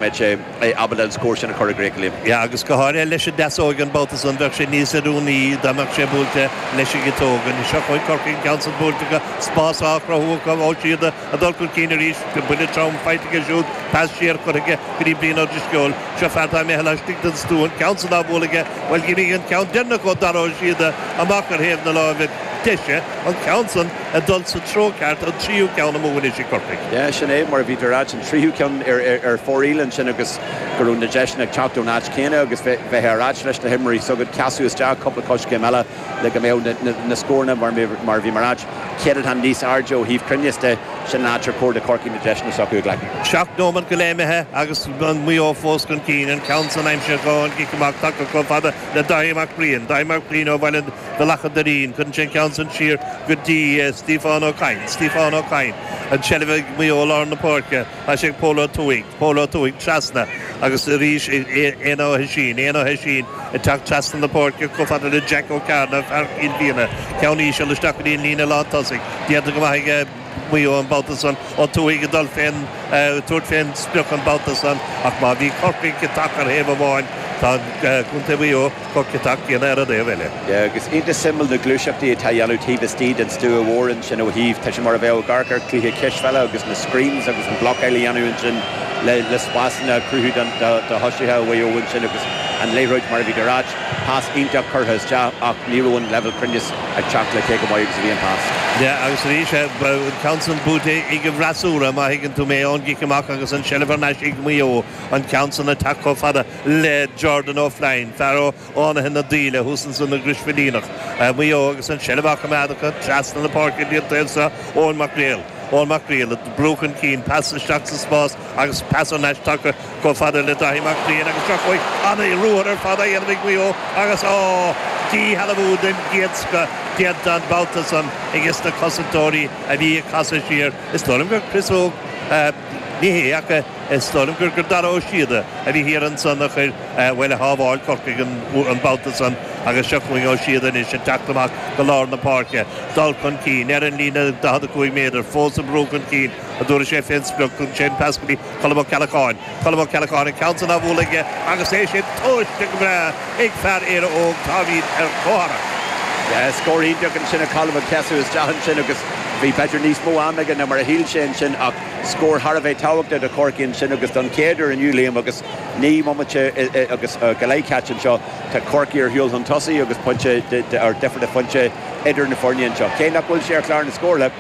mbeidh sé ábalta an scór sin a chur i gcrích linn. Yeah, agus go háirithe leis an deasóg an babhta san, bheadh sé níos oiriúnaí dá mbeadh sé buailte leis an gciotóg. Anois, seo chugaibh Corcaigh, an ceann san buailte acu, spás á chruthú acu, ó siad ag dul chun cinn arís, buille trom faighte aige siúd, pas siar curtha aige go dtí Brian Ó Drisceoil. Seo fear atá imithe laistigh den stua, an ceann san á bhualadh aige, bhuel, d'imigh an ceann deireanach ó Dhara Ó Síoda amach ar thaobh na láimhe deise, an ceann san, ag dul sa treo ceart, an tríú ceann amú ansan ag Corcaigh. Yeah, sin é, mar a bhí tú ag ráit, an tríú ceann ar fóraoil ansin agus go raibh na deiseanna ag teacht ón áit chéanna agus bheifeá ag ráit leis na himreoirí s'agat, casadh isteach cúpla coiscéim eile le go mbeadh na scóranna mar a bhí mé ag ráit, céadatán níos airde ó thaobh cruinneas de, sin an áit ar chóir do Chorcaigh na deiseanna s'acu a ghlacadh. Seacht nóimeant go leith imithe agus Maigh Eo fós chun cinn, an ceann san aimsithe ón gcic amach tagtha chomh fada le Dáithí Mac Briain, Dáithí Mac Briain ó Bhealach an Doirín, cuireann sé an ceann san siar go dtí Stiofán Ó Cadhain, Stiofán Ó Cadhain, an tseilbh ag Maigh Eo, lár na páirce, tá sé ag Pól Ó Tuathaigh, Pól Ó Tuathaigh, trasna agus arís ag Éanna Ó hOisín, Éanna Ó hOisín, ag teacht trasna na páirce chomh fada le Jeaic Ó Cearna, fear Chill Mhíona, ceann íseal isteach go dtí an líne lántosaigh, déanta go maith ag. Maigh Eo an babhta san, Ó Tuathaigh ag dul fén, tabhairt fén sprioc an babhta san ach má bhí Corcaigh ciotach ar thaobh amháin tá Contae Mhaigh Eo chomh ciotach céanna ar an dtaobh eile. Agus iontach suimiúil na gluaiseachtaí atá a dhéanamh taobh istigh den stua mhór ansin ó thaobh, tá sé mar a bheadh ag amharc ar chluiche cispheile agus na screens agus an blocáil a dhéanamh ansin le spásanna a chruthú do thosaithe Mhaigh Eo ansin agus an liathróid mar a bhí tú ag ráit. Pas iontach curtha isteach ach ní raibh an leibhéal cruinneas ag teacht le cé chomh maith agus a bhí an pas. Yeah agus arís an ceann san buaite ag an bhfreasúra má thuigeann tú mé, ón gcic amach agus an tseilbh thar n-ais ag Maigh Eo, an ceann san ag teacht chomh fada le Jordan Ó Floinn, fear ó Fhánaithe na Daoile thuas ansan i gCrois Mhaoilíona, Maigh Eo agus an tseilbh á choimeád acu trasna na páirce dtí an taobh seo, Eoin Mac Gréil, Eoin Mac Gréil ag brú chun cinn, pas isteach sa spás agus pas thar n-ais tagtha. Chomh fada le Dáithí Mac Briain agus seo chugainn an-ruathar ar fad á dhéanamh ag Maigh Eo agus, á, díshealbhú den gcéad scoth déanta an babhta san aiges na cosantóirí a bhí ag casadh siar. Is dóigh liom gur Chris Óg, ní hé ach is dóigh liom gur Dara Ó Síoda a bhí thiar ansan a chuir, bhuel, a shábháil Corcaigh an babhta san agus seo chugainn Ó Síoda anois ag teacht amach go lár na páirce, dul chun cinn, ar an líne 45 méadar, fós ag brú chun cinn. an dtabharfaidh sé fén sprioc, tugann sé an pas go dtí Colm Ó Ceallacháin. Colm Ó Ceallacháin an ceann san á bhualadh aige agus é sin tomhaiste go breá ag fear Éire Óg, Táimid ar cothrom. Scór iontach ansin ó Cholm ag casadh isteach ansin agus bhí b'fhéidir níos mó ama aige ná mar a shíl sé ansin ach scór thar a bheith tábhachtach do Chorcaigh ansin agus don chéad uair inniu, Liam, agus naoi mbomaite agus go leith caite anseo, tá Corcaigh ar shiúl chun tosaigh agus pointe difir, tá pointe idir na foirne anseo. Cé nach bhfuil sé ar chlár na scórtha.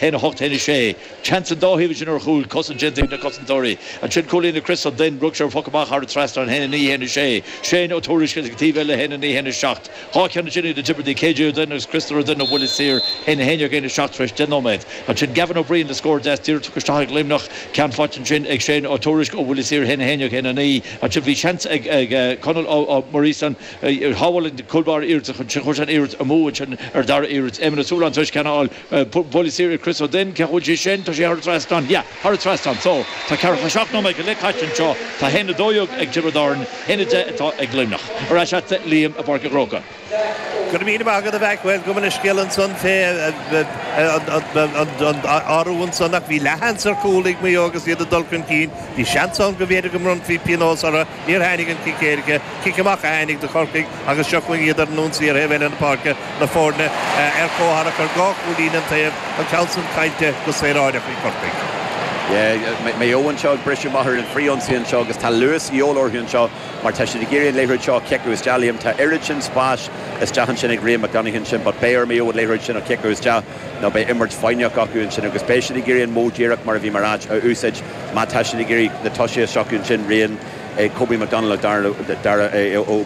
Haon a hocht, haon a sé. Teann an dá thaobh ansin ar chúl. Cosaint déanta ag na cosantóirí. Ansin cúilín ag Chris Ó Duinn. Rug sé ar phoc amach thar an trasnán. Haon a naoi, haon a sé. Shane Ó Tuairisg ag an taobh eile. Haon a naoi, haon a seacht. Dhá cheann ansin ag na Tiobradaigh. KJ Ó Duinn agus Christopher Ó Duinn ó bhuille saor. Haon a haon dhéag, haon a seacht tar éis deich nóiméad. Ansin Gavin Ó Briain le scór deas díreach tugtha isteach ag Luimneach. Ceann faighte ansin ag Shane Ó Tuairisg ó bhuille saor. Haon a haon dhéag, haon a naoi. Ansin bhí seans ag Conall Ó Muiríosáin. Shábháil an cúl báire iarracht ansin. Chuir sé an iarracht amú ansin ar an dara iarracht. Éamon Ó Súilleabháin tar éis ceann a fháil. Buille saor Chris Ó Duinn, cá bhfuil sé sin? Tá sé thar an trasnán. Yeah, thar an trasnán. So, tá ceathracha seacht nóiméad go leith caite anseo. Tá haon a dó dhéag ag Tiobraid Árann, haon a deich atá ag Luimneach. Ar ais chugat a Liam i bPáirc an Chrócaigh. Go raibh míle maith agat a Mhaidhc. Bhuel, gabh mo leithscéal ansan fé athrú ansan ach bhí leathsheans ar chúl ag Maigh Eo agus iad ag dul chun cinn. Bhí seans ann go mb'fhéidir go mbronnfaí pionós orthu. Níor tháinig an cic éirice, cic amach a tháinig do Chorcaigh. agus seo chugainn iad ar an ionsaí ar thaobh eile na páirce, na foirne ar comhtharrac ar dhá chúilín an taobh, an ceann san caillte go saoráideach ag Corcaigh. Maigh Eo anseo ag briseadh amach ar an bhfrithionsaí anseo agus tá luas ag teastáil uathu anseo mar tá siad ag iarraidh an liathróid seo a chiceáil isteach, Liam. Tá oiread sin spáis isteach ansin ag Ria McDonald ansin but beidh ar Maigh Eo an liathróid sin a chiceáil isteach nó beidh imirt foighneach acu ansin agus beidh siad ag iarraidh an modh díreach Kobe McDonald a úsáid má tá siad ag iarraidh na tosaithe a shocrú ansin, Rian. ag Kobe McDonald nó Darragh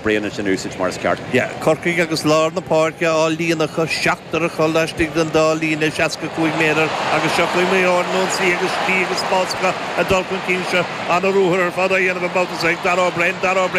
Beirne a úsáid mar is ceart. Corcaigh agus lár na páirce á líonadh acu, seachtar ag dhul laistigh den dá líne, 65 méadar agus seo Maigh Eo ar an ionsaí agus slí agus spás acu ag dul chun cinn seo. An-ruathar ar fad á dhéanamh i mbabhta seo ag Darragh Beirne, Darragh Beirne,